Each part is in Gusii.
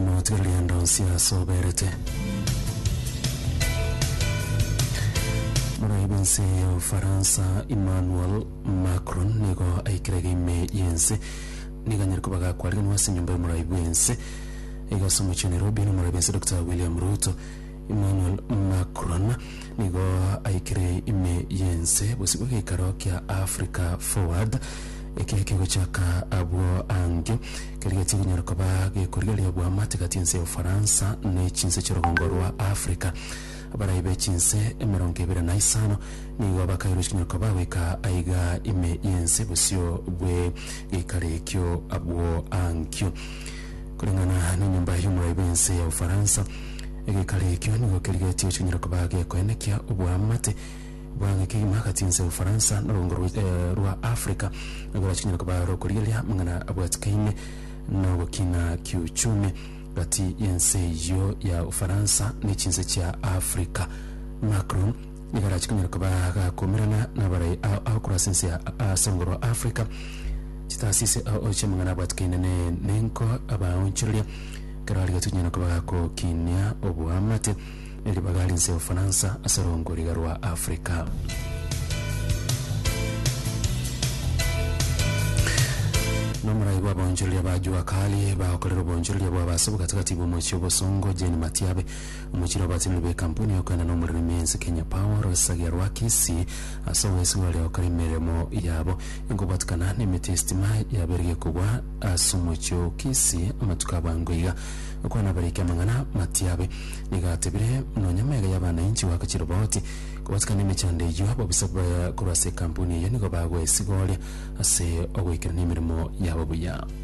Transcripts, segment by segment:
Notiga rienda onsi aase oberete. Moraibi ense ya Ufaransa Emmanuel Macron nigo aikire iga ime y'ense nigo anyare koba gakwariganwa ase enyomba y'omoraibi bw'ense iga ase omochie o Nairobi na omoraibi ense Dokita William Ruto Emmanuel Macron nigo aikire ime y'ense bosibwe geikaro kia Africa Forward ekiria kegochaka abwo ange, keria getie konyara koba gekorigereria bwamate gati ense ya Ufaransa ne chinse chi'orogongo rwa Africa. Abarai be chinse emerongo ebere na isano nigo bakairwe chikonyara koba goika aiga ime y'ense bosio bwe geikaro ekio abwo ankio. Koreng'ana nenyomba y'omorai bw'ense ya Ufaransa, Egeikaro ekio nigo kerigetie gochonyora koba gekoenekia oboamate bw'ageke kegima agati ense y'Obofaransa na oborongo rwa Afrika, na korachonyore koba aro okorigereria amang'ana abwatikaine na ogokina kiuchumi gati y'ense eyio ya Ufaransa ne chinse chia Afrika. Macron nigo arachikonyore koba gakomerana nabarai ao korwa ase ense ya ase oborongo rwa Afrika chitaasisi ao oiche amang'ana abwatikaine ne nenko abaonchoreria. Ekero aria tonyara koba gakokinia oboamate ne ribaga rinse Ufaransa ase rongoriga rwa Africa. Nomorai bw'abaonchoreria ba Jua Kali bagokorera obonchoreria bwabo ase obogatagati bw'omochie obosongo Jane Matiabe Omochire obasindu b'ekampuni y'okoenda nomorero ime ense Kenya Power Rosagia Rwakesi ase ogwesigwa ore gokora emeremo yabo enkobwatikana nemeti y'esitima yaberegie kobua ase omochie o Kisii amatuko abango iga okwana abariki amang'ana matiabe nigo atebire nonya mega y'abanainchi goaka chiroboti kobwatikana emechando eyio ababusa korwa ase ekampuni eyio nigo bagwesigooria ase ogoikerania emeremo yabo buya.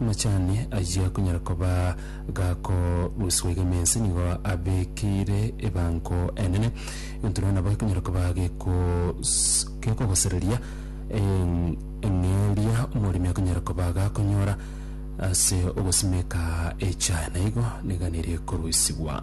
Amachani ayio akonyara koba gakorusigwa iga emensi nigo abekeire ebango enene, egento rero nabo gekonyara koba gekos- gekogosereria en- eng'e eria omoremi akonyara koba gakonyora ase ogosimeka echae, na igo niga nere ekorusigwa.